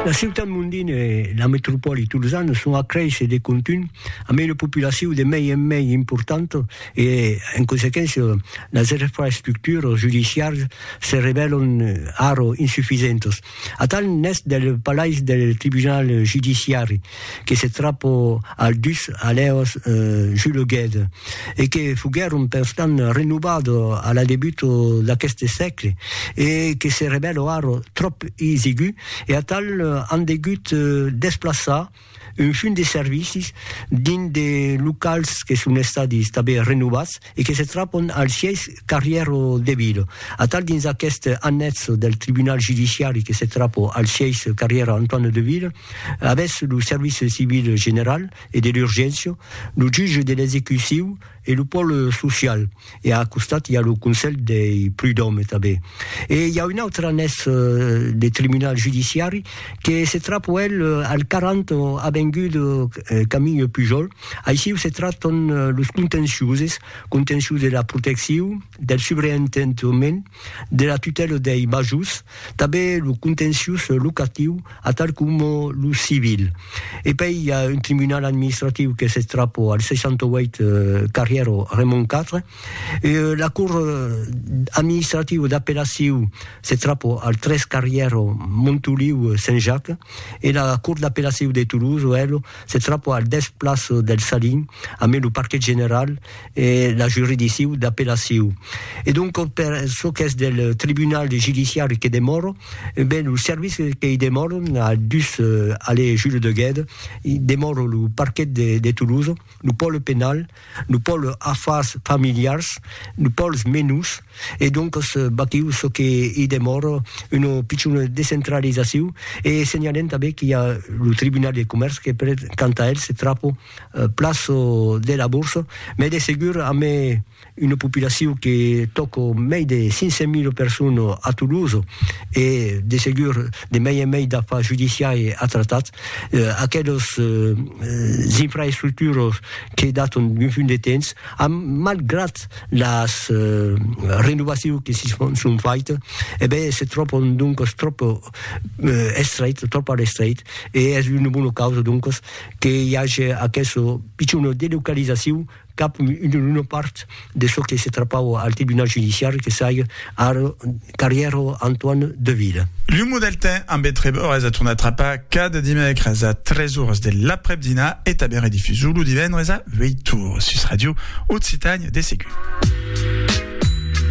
La ciutat mondina e la metropòli tolzana son a créisser de contunh amb una populacion de mei en mei importanta e, en consequéncia, las infraestructuras judiciaras se revèlan ara insufisentas. Atal n'es del palais del tribunal judiciari que se trapo al dus alèos juleguèt e que foguèron perstant renovado a la debuto d'aqueste sègle e que se revèlo ara tròp isigu e atal an degut desplaçar un fum de servicis dins de locals que son estadi tanben renovats e que se trapon al sièis Carrièro de Vilo. Atal dins aqueste annètzo del tribunal judiciari que se trapo al sièis Carrièro Antoine de Vilo, avètz lo service civil general e de l'urgéncia, lo jutge de l'execuciu e lo pòle social e a costat i a lo conselh dei prudòme tanben. E i a un autre annètz de tribunal judiciari que se trapo el al 40 avenguda Camille Pujol, Aixiu se tractan los contenciuses, contencius de la protecciu, del subreentendement, de la tutèla dei majors, tanben lo contencius locatiu, atal coma lo civil. E pei i a un tribunal administratiu que se trapa al 68 carrièra Raymond 4. La cor administrativa d'apellaciu se trapa al 3 carrièra Montoliu Saint-Jacques e la cor d'apellaciu de Toulouse, Oèlo, se trapò al dètz plaç del Salin, a mai lo parquet general e la juridicciu d'apellaciu. E donc per çò qu'es del tribunal judiciari que demòro, ben lo serviç qu'i demòro a dus allée Jules de Guède, demòro lo parquet de Toulouse, lo pòle penal, Lo pòl afars familiars, lo pòls menus, e doncas batiu çò que i demòr, una pichona descentralizaciu, e senhalem tanben qu'i a lo tribunal de comèrç que per tant a el se trapo plas de la borsa, mai de segur amé una populaciu que tòco mai de 500.000 personas a Toulouse, e de segur, de mei en mei d'afar judiciari a tratar, aquelos infraestructuros que daton d'un punt de temps, a malgrat las renovacius que si son faite, e ben se tròpon doncas tròp estreit, tròp a l'estreit, e es una bona causa doncas que i age aqueso pichon de localisaciu, cap una part de çò que se trapau al tribunal judiciari que saiga ar carrièr Antoine Deville. Lo Modeltin ambe treb ores a tornar trapar cada dimècres a 3 ores de l'aprèp-dinar e tanben redifusor lo divendres a 8 ores sus Ràdio Occitània de segur.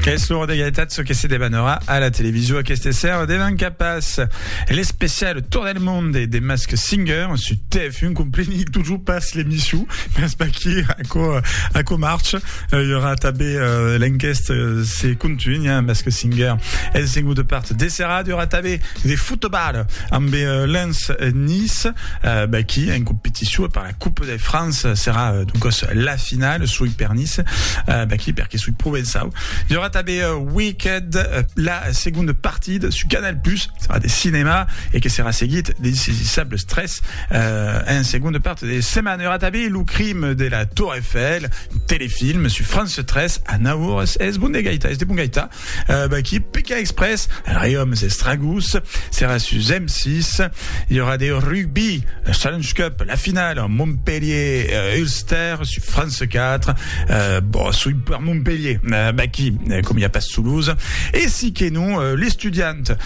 Es l'ora d'egalitat çò que se debanarà a la televisor aqueste sèrre devan cap as l'especial Tour del monde de Mask Singer sus TV. Fin compreni tojo pas l'emission, mas paquí aquò, aquò marche. Il y aura tabé euh, l'enqueste, se contunya, mas que singer el sengu de part de serrat, il y aura tabé de futebal amb euh, Lens Nice, euh, baquí en competició per la Coupe de France, serà euh, donc la finale, sui per Nice, euh, baquí perque sui provençau. Il y aura tabé euh, Wicked, euh, la seconde partida su Canal+, serà de cinema e que serà seguit de Saisisables 3 Cat. En segonda part de setmana aurà tanben Lo crim de la Tour Eiffel, un telefilm sus France 3 a 9 oras. Es bon de gaitar, es de bon gaitar. Qui peca exprès, Riòms e Stragos, serà sus M6. I aurà de rugbi, Challenge Cup, la finala Montpellier-Ulster sus France 4. Bon, soi per Montpellier, qui, com i a pas Toulouse. E si que non, l'estudiant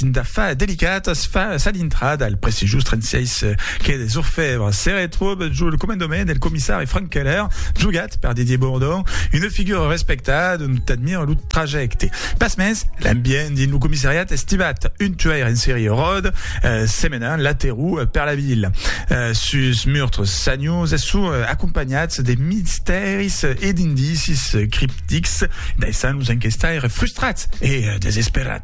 Dinda fa delicatas fa sa dintrada al prestigiós 36 quai des Orfèvres. Se retròb jo lo comandament del comissari Frank Keller, jogat per Didier Bourdon, una figura respectada dont admira lo trajècte. Pasmens, l'ambient dins lo comissariat es tibat. Un tuaire en serie ròd se menant laterau per la vila, sus murtres sanius e surt acompanhats de mistèris e d'indicis criptics, daissant los enquestaires frustrats e desesperats.